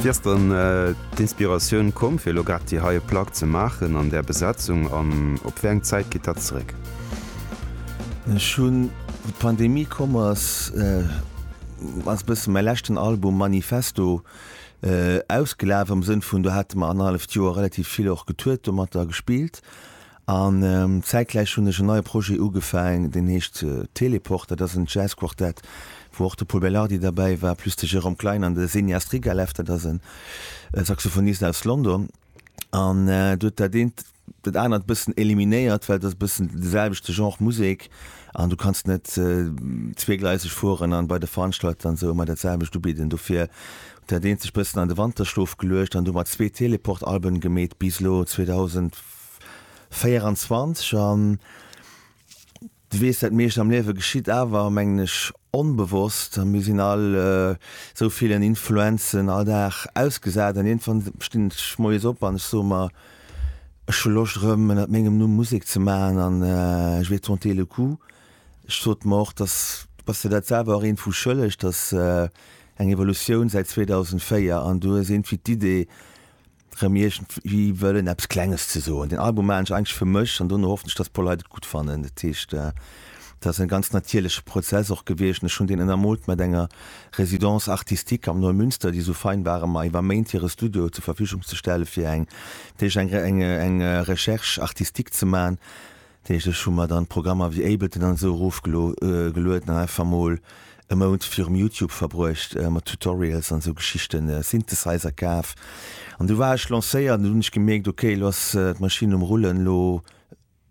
Wéi ass dann d'Inspiratioun komm fir elo grad déi hei Plack ze maachen an där Besetzung an op wéi eng Zäit geet dat zeréck? Ech hunn, wou d'Pandemie komm ass, ass e bësse mäi leschten Album Manifesto ausgelaf am Sënn vun do hate mer annerhalleft Joer relativ vill och getourt domatter a gespillt An zäitgläich hunn ech en neie Projet ugefaang, deen heescht Teleport. Dat ass en Jazzquartett, wou och de Pol Belardi derbäi war, plus de Jérôme Klein an de Senia Strigalev, dat ass e Saxophonist aus London. An do huet dat eent dat anert e bëssen eliminéiert, well et ass e bëssen de selwechte Genre Musek an du kanns net zweegleiseg fueren an bei de Veranstalter an esou ëmmer dat selwecht ubidden. Dofir huet dat eent sech e bëssen an de Wanterschlof geluecht an du hu mer zwee Teleport-Alben gemeet bis elo 2000. 24 an du weess, dat meescht am Liewe geschitt awer, mengen ech, onbewosst a mir sinn all esou villen Influenzen all Dag ausgesat an iergendwann stinn ech moies op an ech soe mer, ech hu Loscht erëm ënnert mengem Numm Musek ze maachen an je vais tenter le coup. Ech sot mer och, dass du bass dir dat selwer och iergendwou schëlleg, dass eng Evolutioun säit 2004 an du hues iergendwéi d'Idee, rëm iergendwéi wëllen eppes Klenges ze soen. Den Album maachen ech eigentlech fir mech an dono hoffen ech, dass puer Leit et gutt fannen. Dat heescht, dat ass e ganz natierleche Prozess och gewiescht an ech hunn deen ënnermoolt mat enger Résidence artistique am Neumünster, déi esou fein ware mer iwwer Méint hire Studio zur Verfügung ze stellen, fir eng, dat heescht eng Recherche artistique ze maachen. Deeglech hu mer dann Programmer wéi Ableton an esou erof gelueden an einfach mol e Mount virum Youtube verbruecht mat Tutorials an esou Geschichten, e Synthesizer kaf an du war ech lancéiert an du hunn ech gemierkt ok elo ass d'Maschinn um rullen, elo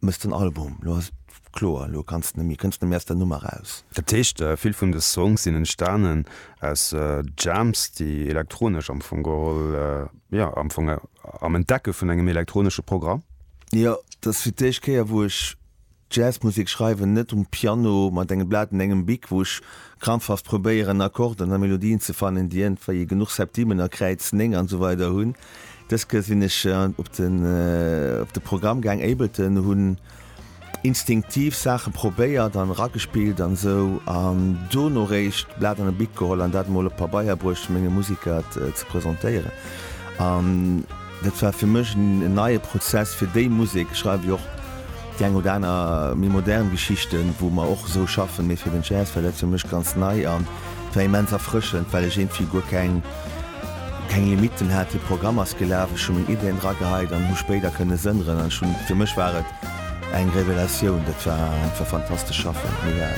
mëss den Album, elo ass kloer, elo kanns de net méi, kënns net méi aus der Nummer raus. Dat heescht vill vun de Songs sinn entstanen aus Jams déi elektronesch am Fong geholl, jo am Fong am Entdecke vun engem elektronesche Programm? Jo, et ass fir d'éischt Kéier wou ech Jazzmusek schreiwen, net um Piano mat engem Blat an engem Bic, wou ech krampfhaft probéieren Akkorden a Melodien ze fannen, déi ëntwéi genuch Septimen a Kräiz 9 an esou weider hunn. Dës Kéier sinn ech op de op de Programm gaang, Ableton, hunn instinktiv Saache probéiert an eragespillt an esou an dono réischt Blat an e Bic geholl an dat emol op Pabeier bruecht fir menge Musiker et ze presentéieren an Dat war fir mech en neie Prozess fir déi Musek. Ech schreiw jo och déi eng oder aner méi modern Geschichten, wou mer och esou schaffen, mee fir den Jazz war dat fir mech ganz nei an et war immens erfrëschend, well ech iergendwéi guer keng keng Limitten hat. De Programm ass gelaf, ech hu meng Ideen dra geheit an hu spéider kënne sënneren an ech hunn, fir mech war et eng Revelatioun. Dat war einfach fantastesch schaffen.